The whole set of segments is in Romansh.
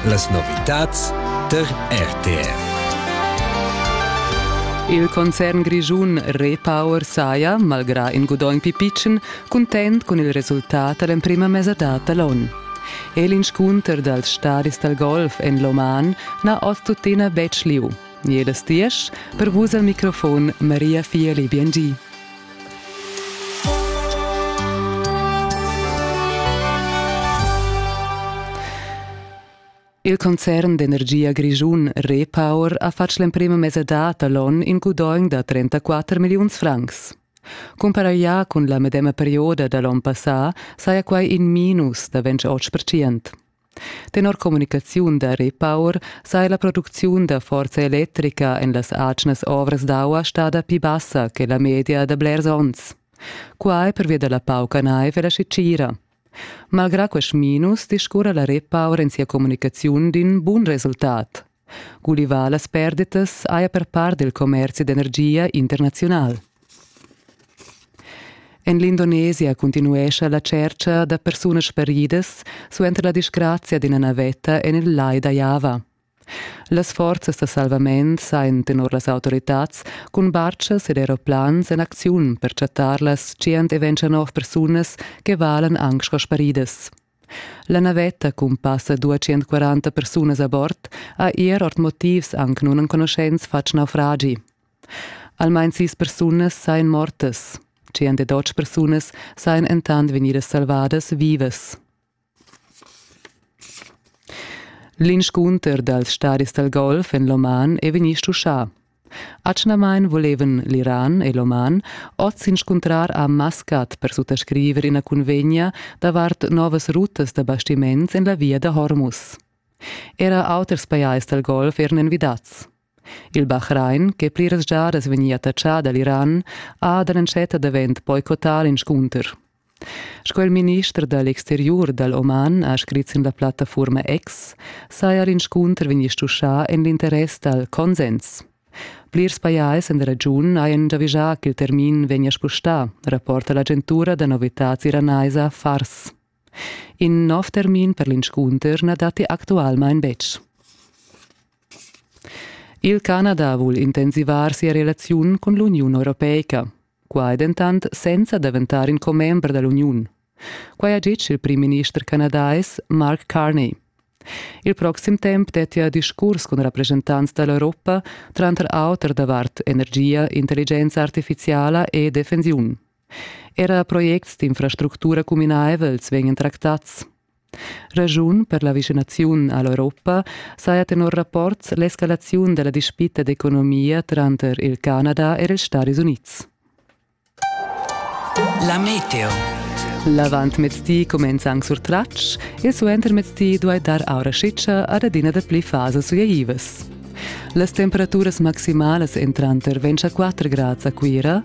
Las novitads tar RTR. Il concern grischun Repower saja, malgrà in gudogn pipitschen, cuntent cun il resultat da l'emprima mesadad da l'onn. E l'inscunter dals stadis dal golf en l'Oman n'ha oz tuttina betg lieu. Jedes diesch, per vus al microfon Maria Fieli Biengi. Il concern d'energia grischun Repower ha fatg l'emprima mesadad all'onn in gudogn da 34 milliuns francs. Cumparaglià cun la medema perioda da l'onn passà saja quai in minus da 28%. Tenor communicaziun da Repower saja la producziun da forza electrica en las atgnas ovras d'aua stada pli bassa che la media da blers onns. Quai pervia da la pauca naiv e la scitgira. Malgrà quest minus discurra la Repower en sia communicaziun d'in bun resultat. Gulivà las perdetas haja per part il commerzi d'energia internaziunal. En l'Indonesia cuntinuescha la tschercha da persunas speridas suenter la disgrazia d'ina navetta en il lai da Java. Las forzas da salvament sajan tenor las autoritads cun bartschas ed aeroplans en acziun per chattar las tschient e ventg nov persunas che valan anc sco sparidas. La navetta cun passa duatschient-quaranta persunas a bord ha er ord motivs anc nunenconuschents fatg naufragi. Almain sis persunas sain mortas. Tschient-e-dotg persunas sain entant vegnidas salvadas vivas. L'inscunter dals stadis dal golf en l'Oman è vegnì stuschà. Atgnamain volevan l'Iran e l'Oman oz s'inscuntrar a Maskat per suttascriver ina cunvegna davart novas rutas da bastiments en la via da Hormuz. Era auters pajais dal Golf eran envidads. Il Bahrain, che pliras giadas vegnia attachà da l'Iran, ha da l'entschatta davent boicottà l'inscunter. Sco il minister da l'exteriur dal Oman ha scrit sin la plattafurma X, saja l'inscunter vegnì stuschà en l'interess dal consens. Plirs pajais en la regiun hajan giavischà ch'il termin vegnia spustà, rapporta l'agentura da novitads iranaisa Fars. In nov termin per l'inscunter na datti actualmain betg. Il Canada vul intensivar sia relaziun cun l'Uniun europeica. Quai dentant senza daventar in commember da l'uniun. Quai ha ditg il primminister canadais Mark Carney. Il proxim temp dettia discurs cun rappreschentants da l'Europa, tranter auter davart energia, intelligenza artifiziala e defensiun. Era projects d'infrastructura cuminaivels vegnan tractads. Raschun per la vischinaziun a l'Europa saja tenor rapports l'escalaziun da la dispita d'economia tranter il Canada e ils Stadis Unids. La meteo. L'avantmezdi cumenza anc sur tratsch e suentermezdi duai dar aura schitscha ad adina dapli fasas sugleivas. Las temperaturas maximalas entran tar 24 grads a Cuira,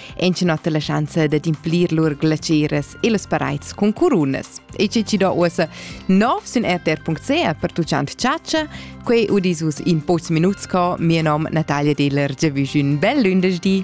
ensinott la schanza dad implir lur glaceras e las paraids cun curunas. E che ci do uossa nov sün rtr.ca per tuciant ciaccia, quei udis us in pocs minuts co, mia nom Natalia Deler, giavüsch ün bel lündesdi.